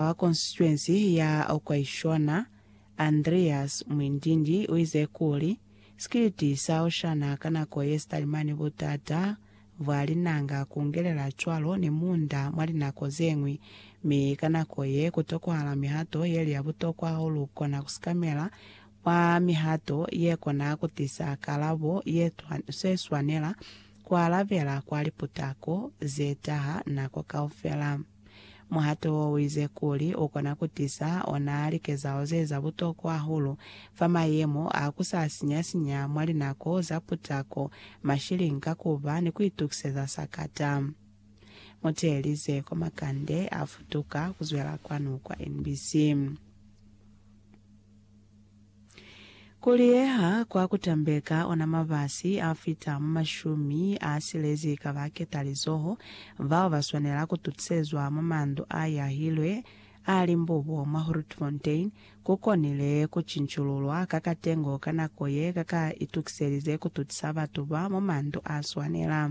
Wa konsituensi ya Okwaishona, Andreas Mwindindi uize kuli, Sikiliti sa Oshana ka nako ye sitalimani butata bwa linanga kungelela cwalo ni munda mwa linako zeñwi, mi ka nako ye kutokohala mihato yeli ya butokwa haulu kona kusikamela mwa mihato yekona kutisa kalabo ye swanela kualabela kwa liputako zetaha nako kaufela. Muhato wo uize kuli u kona ku tisa ona likezahalo ze za butokwa hahulu fa mayemo a ku sa sinya-sinya mwa linako za putako, mashilingi ka ku ba ni ku itukiseza sakata. Mu teelize kwa makande a futuka ku zwela kwanu kwa NBC. Ku liyeha kwa ku tambeka ona mabasi a fita mu mashumi a silezi ka ba ketalizoho bao ba swanela ku tutisezwa mwa mandu a yahilwe a Limbobo mwa Grootfontein ku konile ku cincululwa ka katengo ka nako ye ka ka itukiselize ku tutisa batu ba mwa mandu a swanela.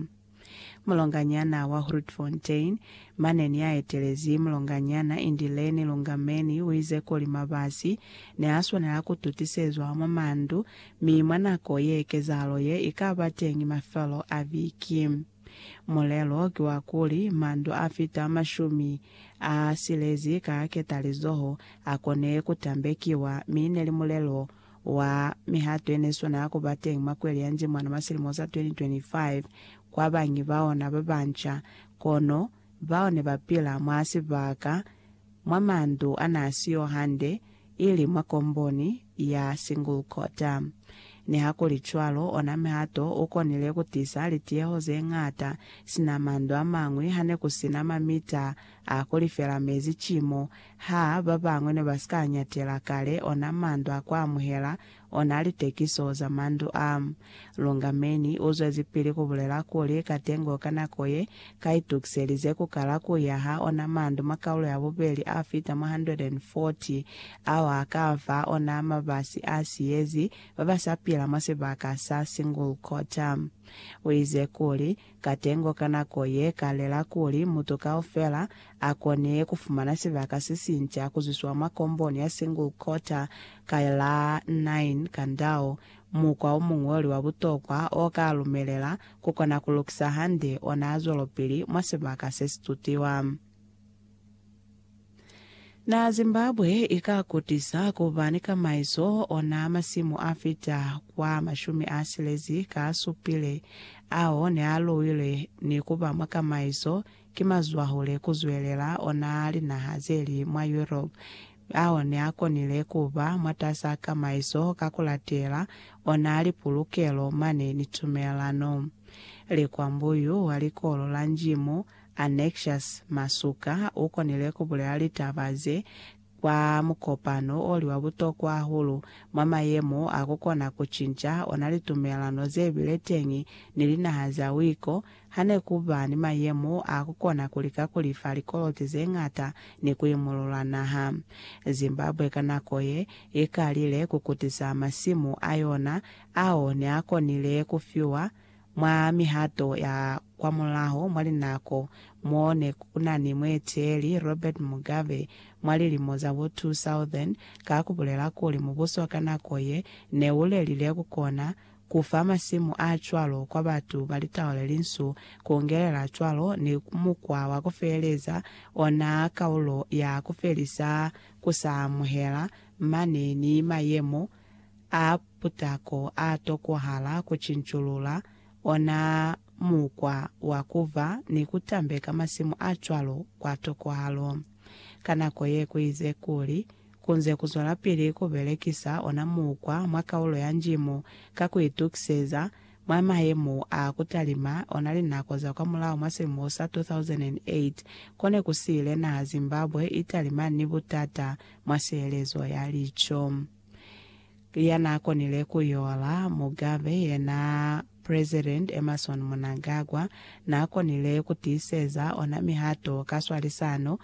Mulonganyana wa Grootfontein, mane ni a etelezi Mulonganyana Indileni Lungameni uize kuli mabasi ne a swanela ku tutisezwa mwa mandu mi mwa nako ye kezahalo ye i ka ba teñi mafelo a viki. Mulelo ki wa kuli mandu a fita mashumi a silezi ka ketalizoho a kone ku tambekiwa mi ne li mulelo wa mihato yene swana ya kuba teñi mwa kweli ya Njimwana mwa silimo sa 2025 kwa bañi ba ona ba banca, kono bao ne ba pila mwa sibaka mwa mandu a n'a siyo hande, ili mwa komboni ya single cotter. Nihakulicwalo, ona mihato u konile ku tisa litiyeho ze ñata sina mandu a mañwi ha ne ku si na mamita a ku lifela mezi ki mo Ha ba bañwi ne ba si ka ñatela kale ona mandu a ku amuhela ona litekiso za mandu a, Lungameni u zwezipili ku bulela kuli, Katengo ka nako ye, ka itukiselize ku kala ku yaha ona mandu mwa kaulo ya bubeli a fita mwa 140 ao a ka fa ona mabasi a siyezi ba ba sa pila mwa sibaka sa Singulkota. U ize kuli, Katengo ka nako ye ka lela kuli mutu kaufela a kone ku fumana sibaka se sinca ku zwiswa mwa komboni ya single coater ka la 9 Kandao, mukwa o muñoli wa butokwa o ka lumelela ku kona ku lukisa hande ona zwelopili mwa sibaka se si tutiwa. Na Zimbabwe i ka kutisa ku ba ni kamaiso ona masimu a fita kwa mashumi a silezi ka a supile ao ne a luilwe ni ku ba mwa kamaiso ki mazwahule ku zwelela ona a linaha ze li mwa Europe ao ne a konile ku ba mwatas'a kamaiso ka ku latela ona a lipulukelo mane ni tumelano. Likwambuyu wa likolo la Njimu Annexious Masuka u konile ku bulela litaba ze kwa mukopano o li wa butokwa hahulu mwa mayemo a ku kona ku cinca ona litumelelano ze bile teñi ni linaha za wiko ha ne ku ba ni mayemo a ku kona ku lika ku lifa likoloti ze ñata ni ku imulula naha. Zimbabwe ka nako ye i kalile ku kutisa masimu a yona ao ne a konile ku fiwa Mwa mihato ya kwamulaho mwa linako mo ne ku na ni mueteeli Robert Mugabe mwa lilimo za bo 2000, ka ku bulela kuli mubuso ka nako ye ne u lelile ku kona ku fa masimu a cwalo kwa batu ba litau le linsu, ku ngelela cwalo ni mukwa wa ku feeleza ona kaulo ya ku felisa ku sa amuhela mane ni mayemo a putako a tokwahala ku cinculula ona mukwa wa ku ba ni ku tambeka masimu a cwalo kwa tokwahalo. Ka nako ye ku ize kuli ku nze ku zwelapili ku belekisa ona mukwa mwa kaulo ya Njimo ka ku itukiseza Mwa mayemo a ku talima ona linako za kwamulaho mwa silimo sa 2008, ko ne ku si ile naha Zimbabwe i talima ni butata mwa sielezo ya lico. Ya n'a konile ku yola, Mugabe, ye n'a President Emmerson Mnangagwa n'a konile ku tiiseza ona mihato ka swalisano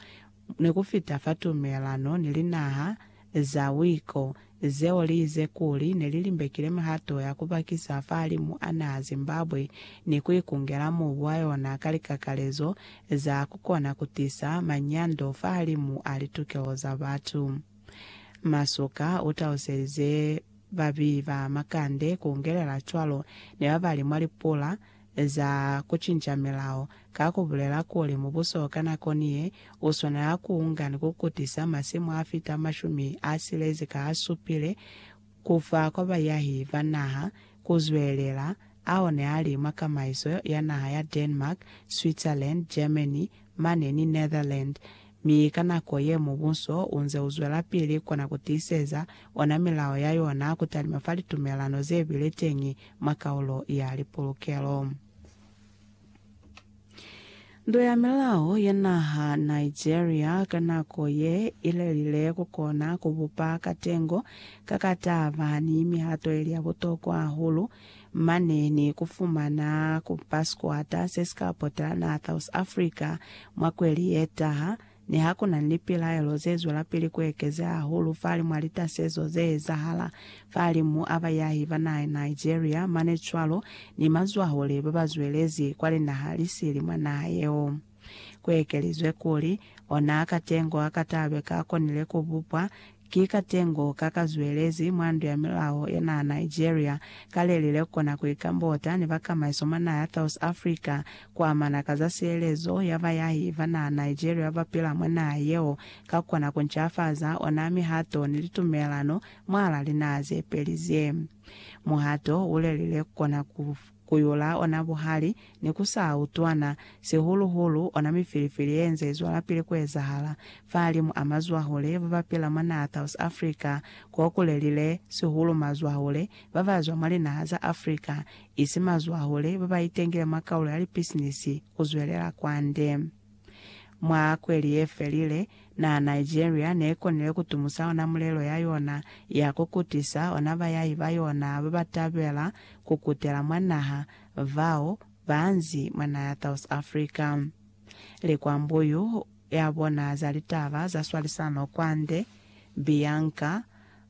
ni ku fita fa tumelano ni linaha za wiko, zeo liize kuli nelilimbekile mihato ya kubakisa fahalimu a naha Zimbabwe ni kuikungela mubu wa yona ka likakalezo za kukona kutisa manyando fahalimu a litukeho za batu. Masuka utaluselize babi ba makande kungelela cwalo ni babali mwa lipula, Eza kucinca milao ka kubulela kuli mubuso ka nako ni ye u swanela kuunga ni kukutisa masimu afita mashumi asilezi ka asupile kufa kwa bayahi ba naha kuzwelela ao ne ali mwa kamaiso ya naha ya Denmark, Switzerland, Germany, mane ni Netherland, mi ka nako ye mubuso u nze u zwelapili kona ku tiiseza ona milao ya yona ku talima fa litumelano ze bile teñi mwa kaulo ya lipulukelo. Ndu ya Milao ya naha Nigeria ka nako ye i lelile ku kona ku bupa katengo ka ka taba ni mihato ili ya butokwa hahulu, mane ni ku fumana ku ba sikwata se si ka pota naha South Africa mwa kweli ye taha, ni ha ku na ni lipilaelo ze zwelapili ku ekezea hahulu fali mwa litasezo ze ezahala fahalimu a bayahi ba naha ya Nigeria mane cwalo ni mazwahule ba ba zwelezi kwa linaha li sili mwa naha yeo. Ku ekelizwe kuli, Ona katengo a katalwe ka konile ku bupwa, ki katengo ka ka zwelezi mwa ndu ya milao ya naha Nigeria, ka le lile ku kona ku ikambota ni bakamaiso mwa naha ya South Africa ku amana ka za sielezo ya bayahi ba naha Nigeria ba pila mwa naha yeo, ka ku kona ku ncafaza ona mihato ni litumelano mwahal'a linaha ze peli ze. Muhato u le lile ku kona ku. Ku yula ona buhali ne ku sa utwana, sihulu-hulu ona mifilifili ye nze i zwalapili ku ezahala fahalimu a mazwahule ba ba pila mwa naha South Africa, ko ku lelile sihulu mazwahule ba ba zwa mwa linaha za Africa, isi mazwahule ba ba itengile mwa kaulo ya lipisinisi ku zwelela kwande. Mwa kweli ye felile, naa Nigeria ne konile ku tumusa ona mulelo ya yona ya ku kutisa ona bayahi ba yona ba ba tabela ku kutela mwa naha bao ba nzi mwa naha ya South Africa. Likwambuyu ya bona za litaba za swalisano kwande, Bianca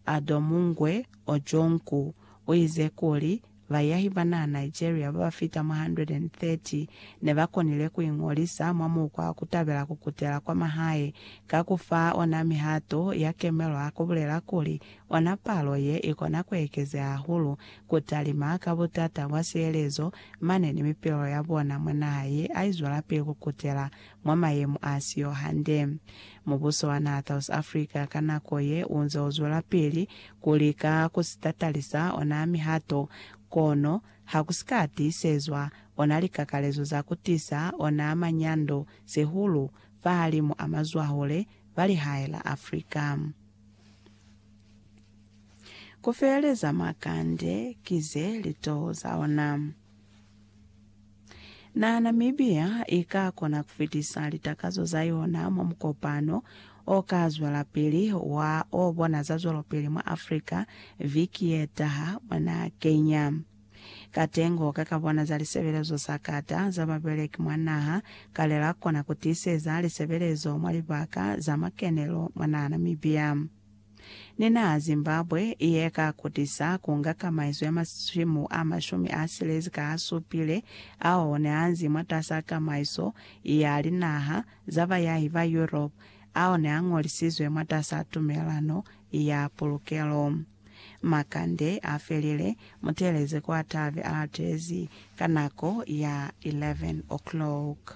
Adomungwe Ojongwu, u ize kuli, Bayahi ba naha Nigeria ba ba fita mwa 130 ne ba konile ku iñolisa mwa mukwa wa ku tabela ku kutela kwa mahae ka ku fa ona mihato ya kemelo ha ku bulela kuli ona palo ye i kona ku ekezeha hahulu ku talima ka butata bwa sielezo mane ni mipilelo ya bona mwa naha ye a i zwelapili ku kutela mwa mayemo a si yo hande. Mubuso wa naha South Africa ka nako ye u nze u zwelapili ku lika ku si tatalisa ona mihato, kono ha ku si ka tiisezwa ona likakalezo za ku tisa ona manyando, sihulu fahalimu a mazwahule ba lihae la Africa. Ku feeleza makande ki ze litoho za ona. Na Namibia i ka kona ku fitisa litakazo za yona mwa mukopano o ka zwelapili wa o bona za zwelopili mwa Afrika viki ye taha mwa naha Kenya. Katengo ka ka bona za lisebelezo sa kata za babeleki mwa naha kale la kona ku tiiseza lisebelezo mwa libaka za makenelo mwa naha Namibia. Ni na Zimbabwe ye ka kutisa ku nga kamaiso ya masimu a mashumi a silezi ka a supile ao ne a nzi mwatas'a kamaiso ya linaha za bayahi ba Europe ao ne a ñolisizwe mwatas'a tumelano ya pulukelo. Makande a felile, muteeleze kwa tabe a latezi ka nako ya 11 o'clock.